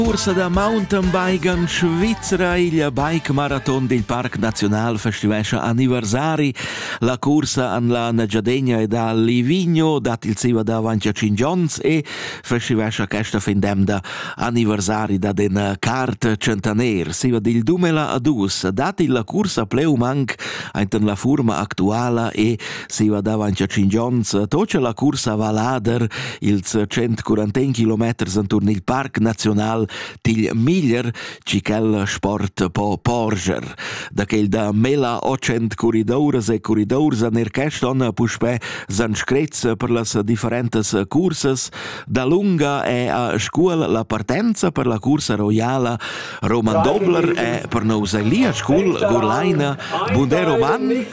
Cursa da mountain biken Svizra il bike maraton dil Parc Naziunal festivescha anniversari. La cursa an la Nagyadegna e da Livigno dat il siva davanti a 5 ons e festivescha questa fin demda anniversari da den cart centaner. Siva dil dumela a dus dat il la cursa pleu manc ainten la furma actuala e Si guardava anche cinque onns, tocca la cursa Valader, ils 141 kilometers intorno il Parc Nazional Til Miglier, ci quel sport po porger. Da quel da mela 800 corridores e corridors nel Keston puspè san screz per las differentes cursas, da lunga è a scuol la partenza per la cursa royala Roman Dobler e per nous è lì a scuol Gurlaina Bunde Roman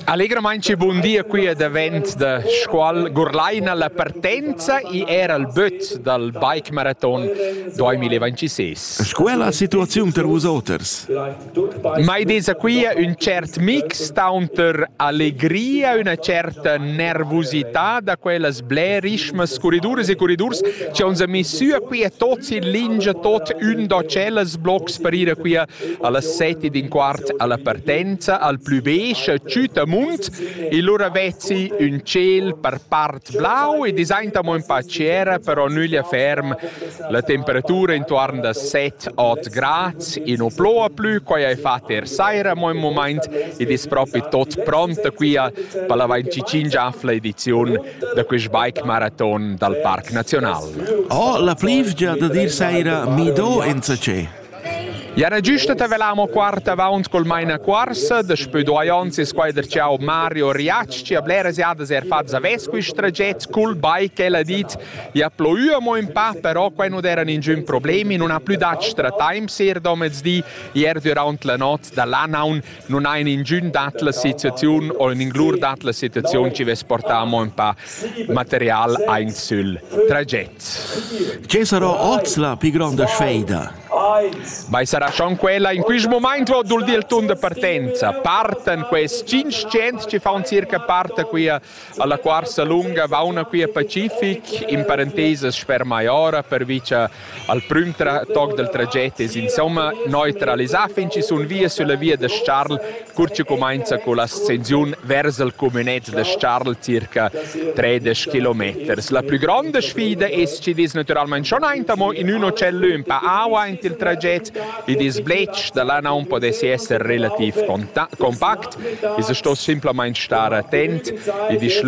Allegramain che bun dia qui è davent da Scuol Gurlaina la partenza e era il böt dal bike marathon 2026. Sco è la situaziun per vos oters? Mai desa qui un cert mix taunter allegria, una certa nervosità da quellas blerismas corriduras e corridurs che uns a messua qui a tots in lingia tot un docellas blocs per ir a qui a Allas set ed in quart alla partenza al plü besch tschüta munt, il lura vezzi ün tschel per part blau ed es aintamo ün pa ciera, però nüglia ferm. La temperatura intuorn da 7-8 grads, i nu ploua plü, quai hai fat er saira mo ün mumaint ed es propi tot pronta quia per la 25 ediziun da quist bike maraton dal Parc Nazional. Oh, la plivgia da dir saira mi do enzatgé. Jana giusta ta velamo quart avaunt col mainacuorsa, daspö duai ons es quai der ciao Mario Riatsch chi ha bleras jadas eir fat zavess quist traget cul bike. El ha dit, ja ploi amo ün pa, però quai nu d'eran ingün problem, in nun ha plü dat strataimps ir domezdi, ier düraunt la not da l'anaun Non ha in ingün dat la situaziun o in inglur dat la situaziun chi vess portà amo ün pa material aint sül traget. Che sarà oz la pii gronda sfeida? Vai sarà schon quella in quist moment vo dul dir il tun de partenza. Parten quels 500 chi faun circa parte qui a Alla cuorsa lunga vauna qui a Pacific in parentesas sper Maiora pervi cha al prüm toc dal traget es insomma neutralisà fin chi sun via sulla via da Charles cur chi cumainza con l'ascensiun vers il cumünet da Charles circa tredisch kilometers. La plü gronda sfida es chi ves natüralmaing schon aint amo in üno cell ün pa aua aint il traget Il disbletsch da là non podessi esser relativ compact, esa sto simplamaing star attent e disch